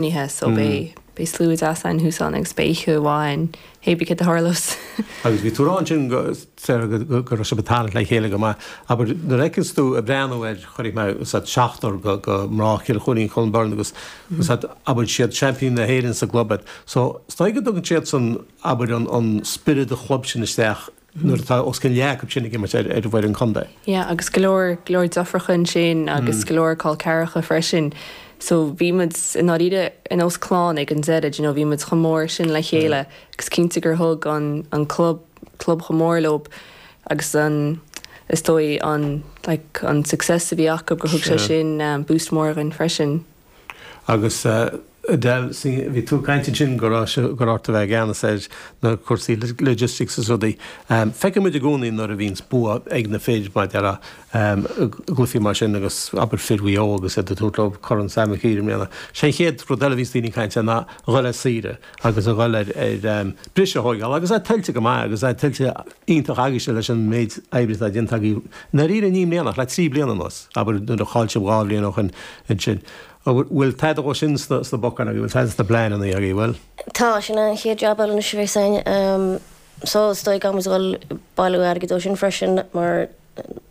nithe so bé bé slua deas ann thúsán agus bé oíche amháin hé b'cé do tharlós. Agus bhí tú rá ansin go Sarah go go raibh sibh ag tarraingt le chéile go maith abair nuair a fheiceanns tú ag breathnú air cuirfidh mé is iad seachtar go go mná Chill Choirín Cluain Bheirn agus is iad abair siad seaimpíní na hÉireann sa gclub so is dóigh go dtugann siad san abair an an spiorad an chlub sin isteach nuair atá os cionn leath acu sin ag imirt ar fhoireann contae. Yeah agus go leor go leor driofúracha ansin agus go leor col ceathracha freisin so bhí muid i ndáiríre ar nós clann ag an deireadh you know bhí muid chomh mór sin le chéile agus cinnte gur thug an an club club chomh mór leo agus an is dóigh an like an success a bhí acu gur thug sé sin boost mór dhúinn freisin. Agus Edel, bhí tú ag caint ansin go raibh, go raibh ort a bheith i gceannas ar na cúrsaí logistics 's rudaí. Feiceann muid i gcónaí nuair a bhíonns bua ag na fir mar déarfá, i gcluifí mar sin agus abair fir Mhaigh Eo agus iad ag tabhairt leo Corn Sam Mhic Uidhir i mbliana. Sé an chéad rud eile a bhíonns daoine ag caint air ná a dhul ar saoire. agus a dhul ar bhriseadh a thóigeáil agus é tuillte go maith agus é tuillte iontach agaibhse leis an méid oibre atá déanta agaibh i ndáiríre ní i mbliana ach le trí bliana anuas abair nuair a cháiligh sibh dhá bhliain ó shoin ansin bhfuil tada dhó sin sna bacáin agaibh bhfuil tada sna pleananna agaibh bhfuil. Tá, sin an chéad jab eile anois a bheas againn so is dóigh go mbeidh muid ag dhul ag bailiú airgid dó sin freisin mar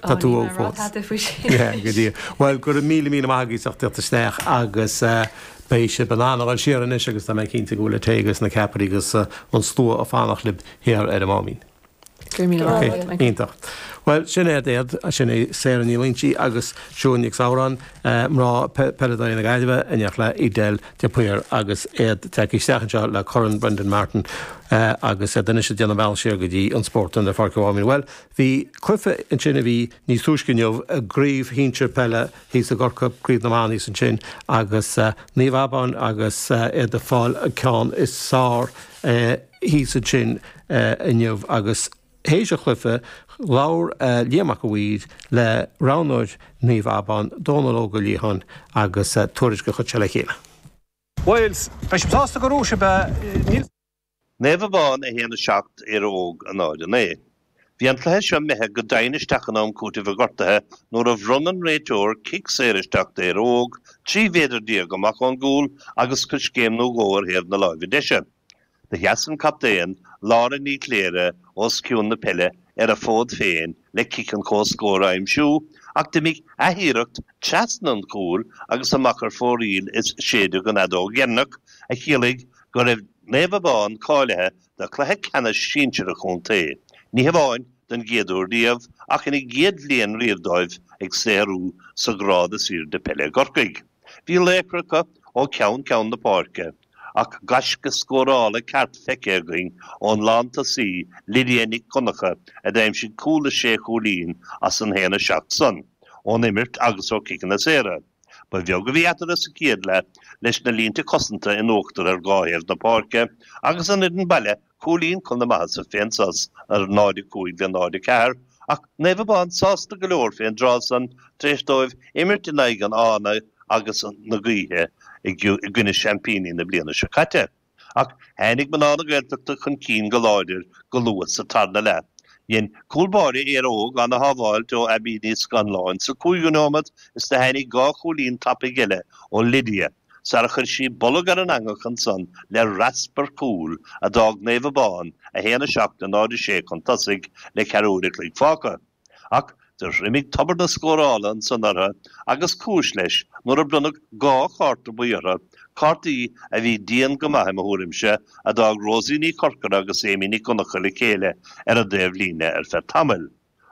Tá tú ó fós. Tá tú faoi sin. Go dtí. Bhuel go raibh míle míle maith agaibh as ucht a thíocht isteach agus beidh sibh in ann a dhul siar anois agus tá mé cinnte go bhfuil an tae agus na ceapairí agus an slua ag fanacht libh thiar ar an Máimín. Go raibh míle maith agat Michael. Iontach. Bhuel sin é Aodh, sin é Sarah Ní Loingsigh agus Siún Nic Samhráin, mná peile de chuid na Gaillimhe in éineacht le Edel de Paor agus iad tagtha isteach anseo le Corn Brendan Martin agus iad anois ag déanamh a mbealach siar go dtí an spórt i bPáirc an Mháimín. Bhuel. Bhí cluife ansin a bhí níos túisce inniu i gcraobh shinsir peile thíos i gCorcaigh, Craobh na mBan thíos ansin agus Naomh Abán agus iad ag fáil an ceann is fearr thíos ansin inniu agus th'éis an chluife labhair Liam Mac a' Mhaoir le roghnóir Naomh Abán, Dónal Óg Ó Liatháin agus tuairisc a chuir sé le chéile. Bhuel, beidh sibh sásta go raibh sibh, níl. Naomh Abán 1 7 Éire Óg 0 9 Bhí an cluiche seo imithe go doimhin isteach in am cúitimh i ngortuithe nuair a bhronn an réiteoir cic saor isteach d'Éire Óg 13 mhéadar amach ón gcúl agus coiscéim nó dhó ar thaobh na láimhe deise. Do sheas an captaen, Lára Ní Chléirigh, os cionn na peile ar a fód féin le cic chun comhscór a aimsiú ach d'imigh athiarracht trasna an chúil agus amach ar fóraoil is séideadh an fheadóg dheireanach a chiallaigh go raibh Naomh Abán cáilithe do chluiche ceannais sinsir an chontae, ní hamháin don chéad uair riamh ach ina gcéad bhliain riamh dóibh ag saothrú sa ghrád is airde peile i gCorcaigh. Bhí laochra acu ó cheann ceann na páirce. ach gaisce scórála ceart feicthe againn ón lántosaí Lydia Nic Dhonnacha a d'aimsigh cúl is sé chúilín as an haon a seacht son, ón imirt agus ó chiceanna saora. Ba bheag a bhí eatarthu sa chéad leath leis na línte cosanta in uachtar ar dhá thaobh na páirce agus an fhoireann baile Cúilín chun na maitheasa fén sos ar 0 5 le 0 4 ach Naomh Abán sásta go leor fén dtráth san tar éis dóibh imirt in aghaidh an fhána agus na gaoithe i gcoinne seaimpíní na bliana seo caite. Ach tháinig mná na Gaeltachta chun cinn go láidir go luath sa tarna leath. Dhein cúl báire Éire Óg an-shábháil ó Abby Ní Scannláin sa cúigiú nóiméad is do tháinig dhá chúilín tapaidh eile ó Lydia, sar a chuir sí bolg ar an eangach ansan le raspar cúil a d'fhág Naomh Abán 1 7 le 0 6 chun tosaigh le ceathrú uair a chloig fágtha. Ach do thriomaigh tobar na scórála ansan ortha agus cúis leis nuair a bronnadh dhá chárta buí ortha, cártaí a bhí dian go maith i mo thuairimse, a d'fhág Rosie Ní Chorcora agus Amy Nic Dhonnacha le chéile ar an dtaobh líne ar feadh tamaill.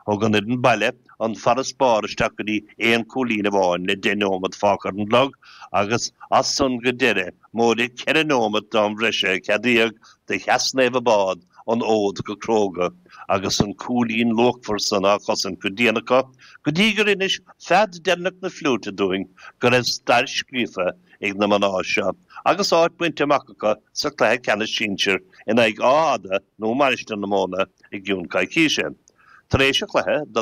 Thug an fhoireann baile an farasbarr isteach go dtí aon chúilín amháin le deich nóimeat fágtha ar an gclog agus as san go deireadh móide ceithre nóimeat d'am bhreise a ceadaíodh do sheas Naomh Abán an fód go cróga agus an cúilín luachmhar san á chosaint go dian acu go dtí gur inis fead deireanach na fliúite dúinn go raibh stair scríofa ag na mná seo agus áit bainte amach acu sa Chluiche Ceannais Sinsir in aghaidh Átha Fhada nó Mainistir na Móna i gcionn coicíse. Tar éis an chluiche, do.